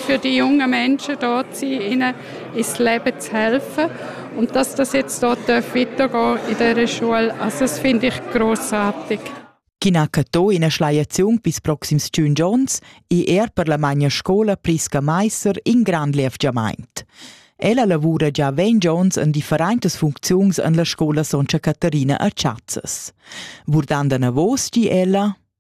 für die jungen Menschen dort sein, ihnen ins Leben zu helfen und dass das jetzt dort weitergehen in dieser Schule, also das finde ich großartig. Chi n'ha catto ina schleiaziun pils proxims tschun giorns è er per la magna scola Priska Meiser in grand levgiamaint. Ella lavura già ventg onns en differentas funcziuns en la scola Soncha Caterina a Chazzas. Vurdando anavos di ella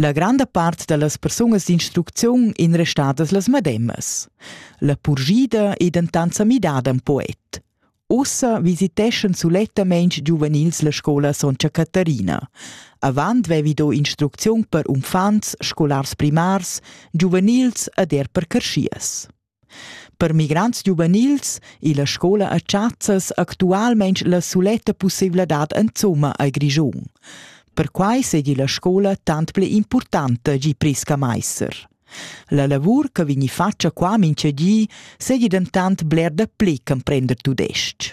La granda part da las persunas d'instrucziun ein restadas las mademas. La purschida ei dentant sa midada en poet. Ussa visiteschan sulettamein giuvenils la scola Sontga Catarina. Avant vevi do instrucziun per uffants, scolars primars, giuvenils ed er per carschias. Per migrants giuvenils illa scoula a Chazzas actualmaing la suletta pussaivladad insomma al Grischun. Perquai seigi la scoula tant pli importanta gi Prisca Meister. La lavur che vegni fatga qua mincha di seigi dentant bler dapli ch'emprender tudestg.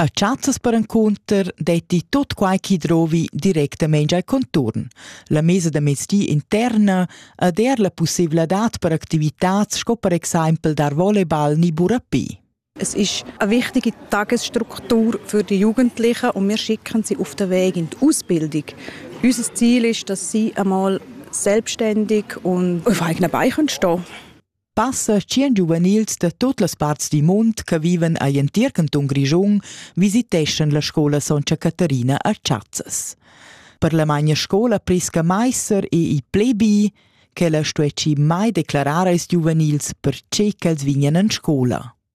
A chazzas perencunter detti tut quai chi drovi directamein al conturn. La mesa da mezdi interna ed er la pussevladad per activitats sco per exempel dar volleyball ni burapé. Es ist eine wichtige Tagesstruktur für die Jugendlichen und wir schicken sie auf den Weg in die Ausbildung. Unser Ziel ist, dass sie einmal selbstständig und auf eigenen Beinen stehen können. Passa tschien giuvenils da tut las parts dil mund che viven egl entir cantun Grischun visiteschan la scola Sontga Caterina a Chazzas. Per la magna scola Prisca Meiser e il plebi, ch'ella stuessi mai declarar als giuvenils per tge ch'els vignan en scola.